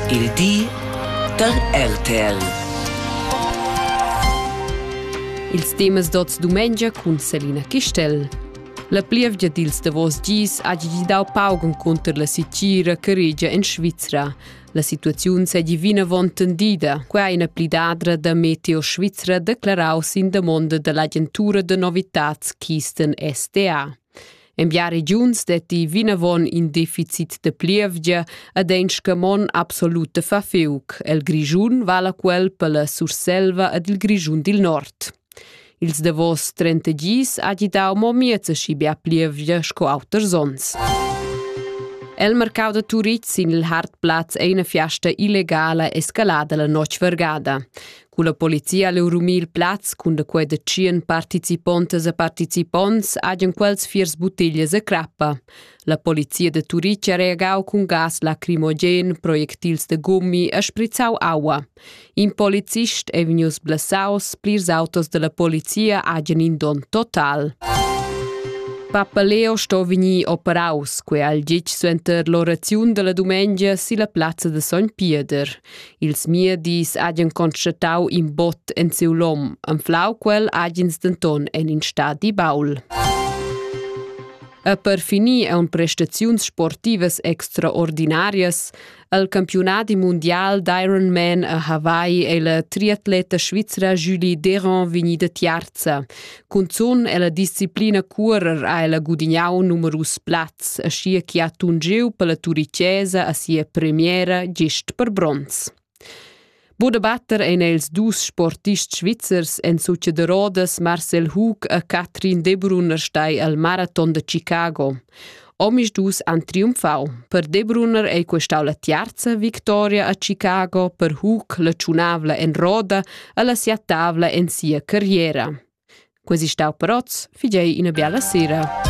Il di da RTL. Ils temas d'oz dumengia cun Selina Chistel. La plievgia dils davos gis ha gidi dau pauc encunter la sitgira che regia en Svizra. La situaziun seigi vinavon tendida, quei ha ina plidadra da Meteo Svizra declarau sin damonda dall'agentura da novitads Kisten SDA. En bia regiuns detti vinavon in deficit de plievgia ed ein scamon absolut de fafiuc. El Grischun vala quel per la Surselva ed il Grischun dil Nord. Ils davos 30 gis ha gidau mo miezeschi bia plievgia sco auters onns. El mercau da Turitg sin il Hartplatz ei una fiasta illegala escalada la notg vergada. Culla polizia leu rumir plaz cun da quei da tschien participontas e participonts hagen quels fiers buttiglias e crappa. La polizia de Turic ha reagau cun gas lacrimogen, projectils de gummi e sprizzau aua. In polizist è vegnius blessaus, plirs autos della polizia hagen in don total. Papa Leo sto vegnir operaus, quei al gitg suenter l'oraziun della dumengia silla plazza de Sogn Pieder. Ils miedis hagen constatau in bot en siu lom, anflau quel hagens denton en in stadi baul. E per finir ein prestaziuns sportivas extraordinarias. El campionadi mundial d'Ironman a Hawaii ei la triatleta svizra Julie Deron vegnida tiarza. Cunzun ella disciplina cuorer ha ella gudignau numerus plazs, aschia che ha tungiu per la turicesa a sia premiera gist per bronz. Buda batter ein els dus sportists svizzers en suche de Rodas Marcel Hug e Katrin Debrunner stai al Marathon de Chicago. Omisdus han triumfau. Per Debruner ei questau la tiarza victoria a Chicago per Hug la tschunavla en roda e la siatavla en sia carriera. Quasi stau peroz, figei ina biala sera.